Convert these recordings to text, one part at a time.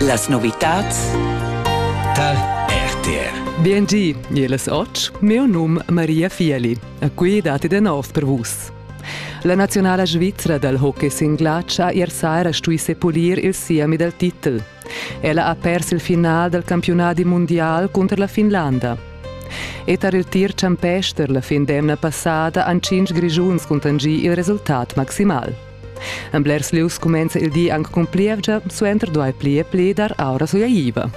Las novitads tar RTR. Biengi, jeles oc, meu num Maria Fieli. A qui dati de nov per vus. La nazionala svizra dal hockey singlat ha ier saira stui sepulir il siemi dal titel. Ella ha pers il final dal campionadi mondial cunter la Finlanda. E tar il tir champester la fin d'emna passada han cinc grischuns contangì il resultat maximal. En blers lieus cumenza il di anc cun plievgia, suenter duai pli e pli dar aura suaiva.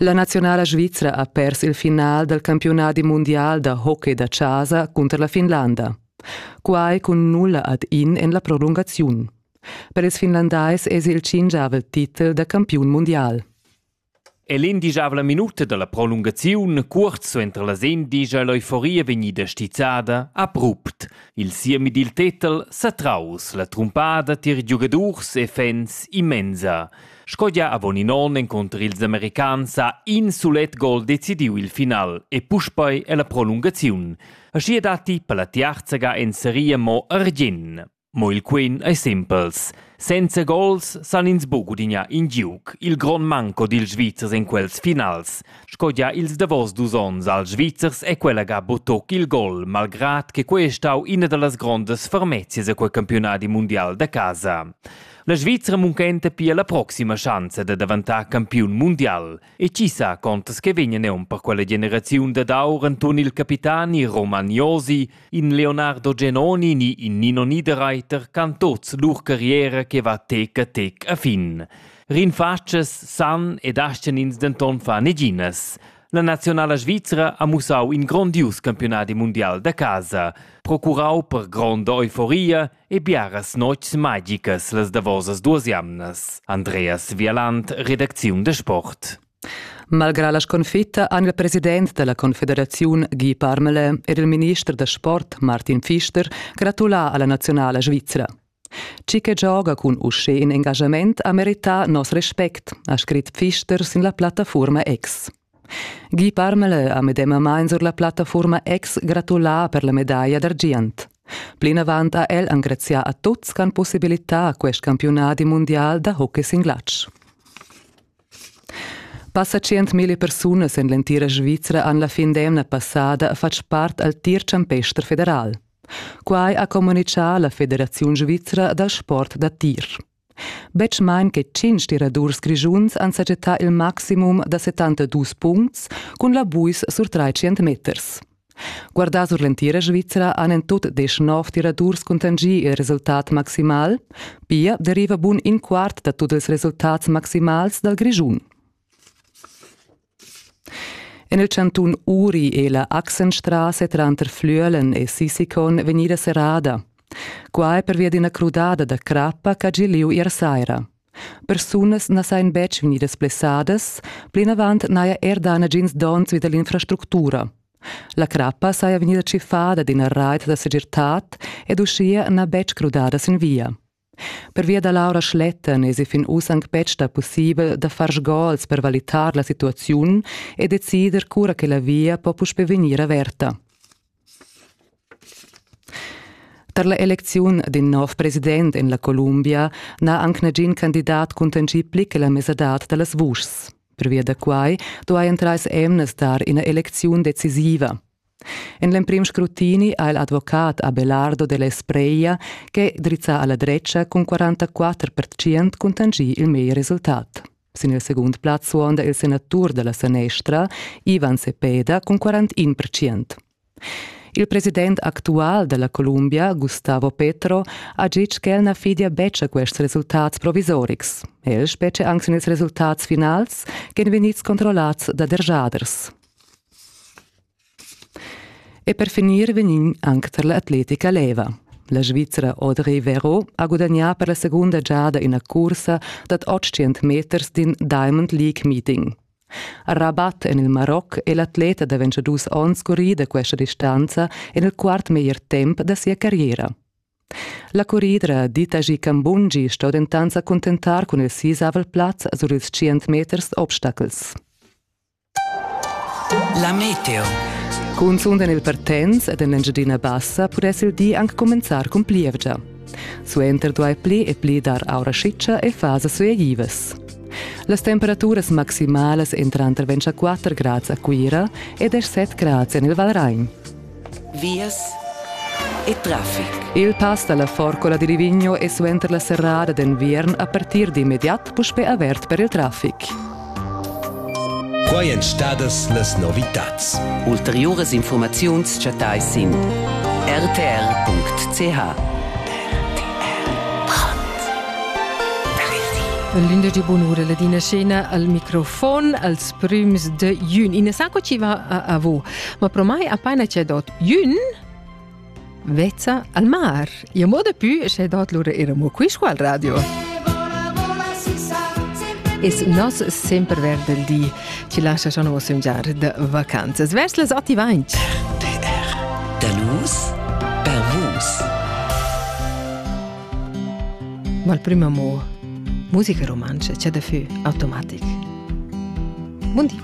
La nazionala svizra ha pers il final dal campiunadi mundial da hockey da chasa cunter la Finlanda. Quai cun nulla ad in en la prolungaziun. Per ils finlandais èsi il tschingiavel titel da campiun mundial. E l'indigiavla minuta dalla prolungaziun, cuort suenter las endisch, ei l'euforia vegnida stizzada abrupt. Il siemi dil tetel Satraus, la trumpada tier giugadurs e fans immensa. Sco gia avon in onn encunter ils americans ha in sulet gol decidiu il final e puspei è la prolungaziun. Aschi datti per la tiarzaga en seria mo Argin. Mo il quen ei sempels. Senza gols san ins buc gudignar in giug, il grond manco dils Svizzers en quels finals, sco gia ils davos dus onns als Svizzers è quella ga butoc il gol, malgrad che quei ei stau ina dallas grondas fermezias a quei campiunadi mundial da casa. La Svizra munchenta pia la proxima schanza da daventar campiun mundial. E chi sa quantas che vegnan eun per quella generaziun dad aur enturn il capitani Romagnosi, in Leonardo Genoni ni in Nino Niederreiter can tots lur carriera che va tec a tec a fin. Rinfatschas san ed aschen ins denton fa neginas. La nazionala svizra ha mussau in grondius campionadi mundial da casa, procurau per gronda euforia e biaras notgs magicas las davosas duas jamnas. Andreas Vialant, redacziun de sport. Malgrà la sconfitta han il president della Confederaziun Guy Parmelin ed il minister da sport Martin Pfister gratulà alla nazionala svizra. Chi che gioga cun uschè in engagament ha merità nos respect, ha scrit Pfister sin la plattafuorma X. Gie Parmala ha medemamain sur la plattafuorma ex gratulà per la medaglia d'argient. Plinavant ha el engrazià a tuts ch'han possibilità quest campiunadi mundial da hockey sin glatsch. Passa 100.000 persunas en l'entira Svizra han la fin d'emna passada fatg part al tir champester federal. Quai ha communitgà la Federaziun svizra dal sport da tir. Betg main che tschintg tiradurs grischuns han sajettà il maximum da 72 puncts cun la buis sur trais meters. Guardà sur l'entira Svizra han en tut desch nov tiradurs cuntanschì il resultat maximal. Pia deriva bun in quart da tut ils resultats maximals dal Grischun. En il chantun Uri è la Achsenstraße tranter Flüelen e Sissikon vegnida serrada. Quai pervia d'ina crudada da crappa ch'ha gì lieu ier saira. Persunas na sajan betg vegnidas blessadas, plinavant n'haja er dà nagins donns vi da l'infrastructura. La crappa saja vegnida tschiffada d'ina rait da segirtad ed uschia n'ha betg crudada sin via. Pervia da l'aura schlettan esi fin uss anc betg stà pussibel da far sgols per valitar la situaziun e decider cura che la via po puspè vegnir averta. Tar la elecziun d'in nov president en la Columbia n'ha anc nagin candidat cuntanschì pli che la mesadad da las vuschs. Pervia da quai duajan trais emnas dar ina elecziun decisiva. En l'emprim scrutini ha il advocat Abelardo de Lespreia che drizzà alla dretga cun 44 pertgient cuntanschì il meglier resultat. Sin il segund plaz suonda il senatur dalla sanestra Ivan Sepeda cun 41 pertgient. Il president actual della Columbia, Gustavo Petro, ha ditg ch'el na fidia betg a quests resultats provisorics. El specie anche sin ils resultats finals, che vegnids controllats da derjaders. E per finir vegnin anc tar l'atletica leva. La Svizra Audrey Vero ha gudagnà per la segunda giada ina cursa dad 800 meters d'in Diamond League meeting. A Rabat en il Maroc è l'atleta da 22 onns currì da questa distanza en il quart meglier temp da sia carriera. La curridra Ditaji Kambungi sto dentant sa cuntentar cun il sisavel plaz sur ils 100 meters obstacels. La meteo. Cunzunt en il Partenz ed en l'Engiadina Bassa pudess il di anc cumenzar cun plievgia. Suenter duai pli e pli dar aura schitscha e fasas suegivas. Las temperaturas maximalas entran tranter 24 grads a Cuira ed er 7 grads en il Valrain. vias e traffic. Il pass dalla Forcola di Livigno è suenter la serrada d'enviern a partir d'immediat puspè avert per il traffic. Quai èn stadas las novitads. Ulteriuras informaziuns chattai sin rtr.ch. L'11 bonura la Dina Scena al microfon als prüms de jun. Ina sa co ci va a avo Ma pro mai apaina c'è dot ün vezza al mar. Io moda più sche dot lura era mo qui squal radio. Es nos sempre verd del di ci lascia schon vos un giar de vacanzas vers les attivainch. Dalus per vus. Ma il primo mo musica romancia c'è da fü automatic. Buon Dio.